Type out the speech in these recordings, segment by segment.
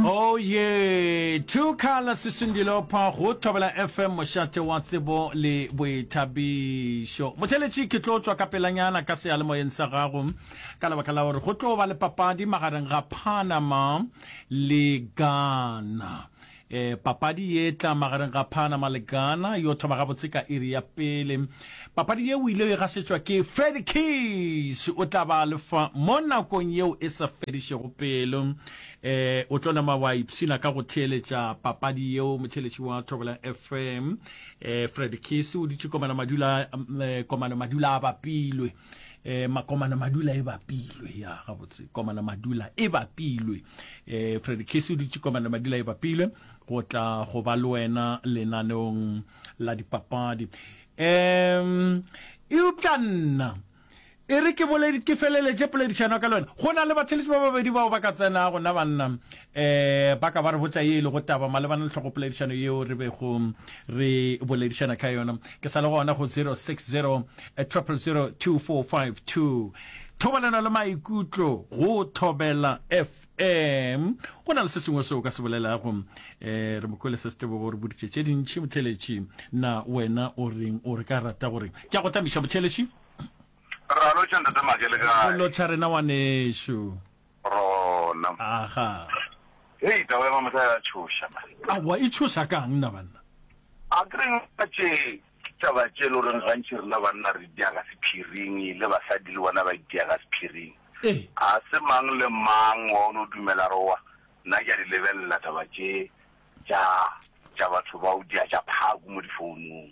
Oye! Two Color Sisindilopha go Thobela FM mošate wa tsebo le boithabišo. Motheletši ke tlo tšwa ka pelanyana ka seyalemoyeng sa gago ka lebaka la gore go tlo ba le papadi magareng ga Panama le Ghana. E, papadi ye tla magareng ga Panama le Ghana yo thoma gabotse ka iri ya pele. Papadi ye o ile o e gasetšwa ke Freddy Keys, o tla ba le fa mo nakong yeo e sa fedišego pelo. E, o tlo nama wa ipshina ka go theeletša papadi yeo motheeletši wa Thobela FM. E, Freddy Keys o dutše komana madula, e, komano madula a bapilwe. eh makomana madula e bapilwe ya gabotse komana madula e bapilwe eh freddy kisi o dutse komana madula e bapilwe go tla go ba le wena lenaneong la dipapadi um eupša nna e re ke ke feleletše poledišano ka le wena go na le batheletši ba babedi bao ba ka tsenago na banna E, ba ka ba re botša ye e lego taba malebana le hlogopoledišano yeo re bego re boledišana ka yona. Ke sa le gona go 060 000 2452. Thobalano le maikutlo go Thobela FM. Go na le se sengwe seo ka se bolelago. E, re mo kwele se se tebogo re boditše tše dintši motheletši. Na wena o reng o re ka rata gore ke a go tamiša motheletši? Ra lotšha ntate Make le kae? Go lotšha rena wanešu. rona. Aha. Hei, taba ya mamotla ya tšhoša, man. Aowa, e tšhoša ka'ng na banna? A ke reng ka tše taba tše lo reng gantši rena banna re dia ka sephiring, le basadi le bona ba itia ka sephiring. Ee. A se mang le mang wa o no dumela re wa. Nna ke a di lebelela taba tše tša tša batho ba o dia tša phaku mo difounung.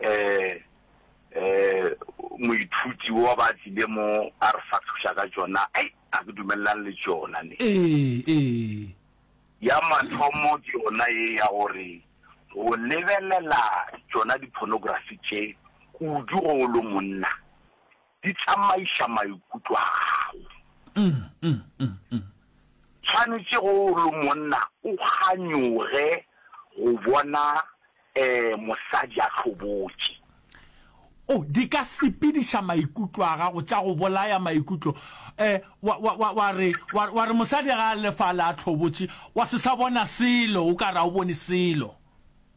um um moithuti wo ba tlile mo a re fahloša ka tšona ai a ke dumelelane le tšona ne ee ee ya mathomo ke yona ye ya gore go lebelela tšona di-pornography tše kudu go o lo monna Di tsamaiša maikutlo a gago. Tshwanetše ge o le monna o kganyoge go bona mosadi a hlobotše. O, di ka sepediša maikutlo a gago, tša go bolaya maikutlo. Wa, wa, wa, wa re, wa, wa re mosadi ge a le fale a hlobotše, wa se sa bona selo, o ka re ga o bone selo.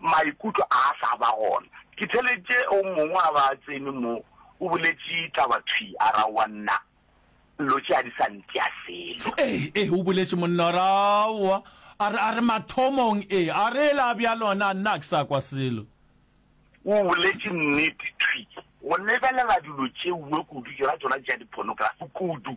maikutlo a a sa ba gona. Ke theletše o mongwe wa ba tsene mo, o boletše taba thwi, a ra, Aowa, nna, lo tše a di sa ntia selo. Ee, ee, o boletše, monna, a ra, Aowa, a re, a re, mathomong, ee, a re, ela bjalo, na, nna a ke sa kwa selo. O boletše nnete thwi. Go lebelela dilo tšeue kudu, tšona, tšona tša di-pornography kudu.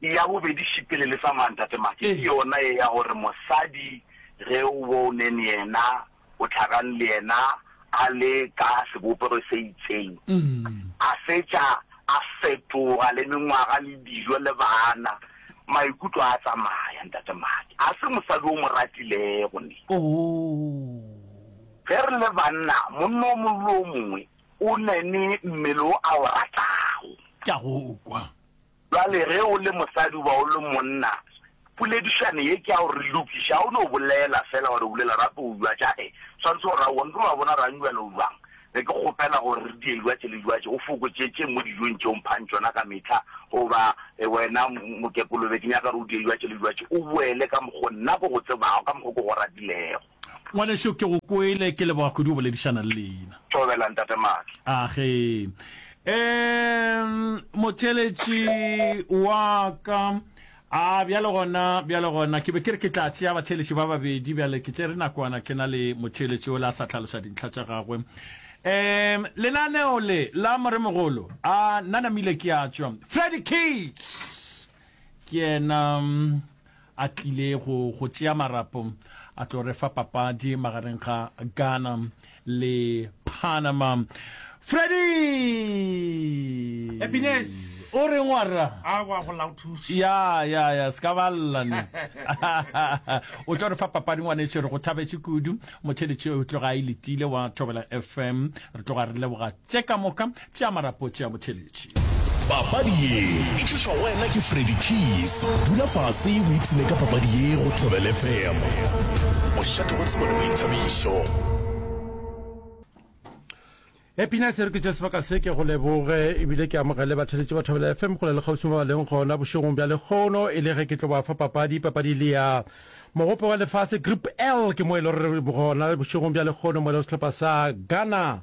Ya bobedi šipele le sa mang tate Make ke yona ye ya gore mosadi ge o bo o ne neyena o tlhagang leyena a le ka sebopego se itseng a fetša a fetoga le mengwaga le dijo le bana maikutlo a tsamaya ntate Make a se mosadi o mo ratilego ne ge re le banna monna o mongwe le o mongwe o ne ne mmele o a o ratago. Ke a go kwa. Bjale ge o le mosadi goba o le monna, poledišano ye ke ya gore re lokiše. Ga o no bolela fela gore o bile lerato o jwa tša ge swanetše gore aowa, nke wa bona rang bjale o jwang. Be ke kgopela gore re die jwatše le jwatše, o fokotše tše mo dijong tše o mphang tšona ka mehla, goba wena mokekolo be ke nyaka gore o die jwatše le jwatše, o boele ka mokgo nna ke go tsebago, ka mokgo ke go ratilego. Ngwanešu, ke go kwele. Ke leboga kudu go boledišana le leina. Thobela, Ntate Maatla. A ge. Eemm, motšeletši wa ka. A bjale gona, bjale gona, ke be ke re ke tla tšea batšheletši ba babedi. Bjale ke tšere nakwana ke na le motšheletši o le a sa tlhaloša dintlha tša gagwe. Eemm, lenaneo le la Moremogolo. A nna namile ke a tšwa. Freddy Keats! Ke yena. a tlile go go tšea marapo a tlo re fa papadi magareng ga Ghana le Panama Freddy Happiness. o reng wa rra a wa go lauthuši ya ya ya se ka ba llane o tlo re fa papadi ngwaneso re go thabetše kudu motheletše o tloga a iletile wa thobela fm re tloga re leboga Tše ka moka tša marapo tša botheletši. Papadi ye e tlišwa go wena ke Freddy Keys. Dula fase o ipshine ka papadi ye go Thobel FM. Mošate wa tsebo le boithabišo. Happiness e re ke tše sebaka se ke go leboge ebile ke amogele batheletše ba thobela fm kgole le kgausimo ba leng gona bošegong bja lekgono e le ge ke tlo ba fa papadi papadi le ya mogope wa lefase group l ke mo e le gore gona bošegong bja lekgono mo e le sehlopha sa ghana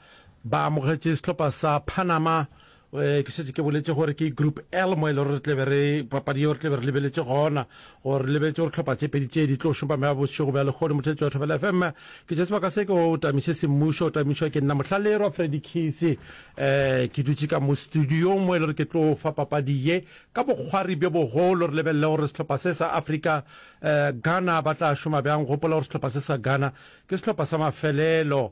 ba amogetše sehlopha sa Panama eh, ke šetse ke boletse gore ke group l mo e le gore re tlebe re papadi yeo re tlebe re lebeletse gona gore re lebeletse gore tlhopha tše pedi tše di tlo šopa mea bošego bja lekgone motheletso wa thobela fm ke tše sebaka se ke o tamiše semmušo o tamišwa ke nna mohlalerwa fredi kise um ke dutše ka mo studio mo e le gore ke tlo fa papadi ye ka bokgwari bjo bogolo re lebelele gore sehlopha se sa africa um ghana ba tla šoma bjang gopola gore sehlopha se sa ghana ke sehlopha sa mafelelo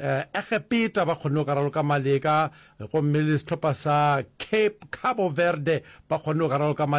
Egepeta ba kgonne go ka raloka Mali ka gomme le sehlopha sa Cape Cabo Verde ba kgonne go ka raloka Mali.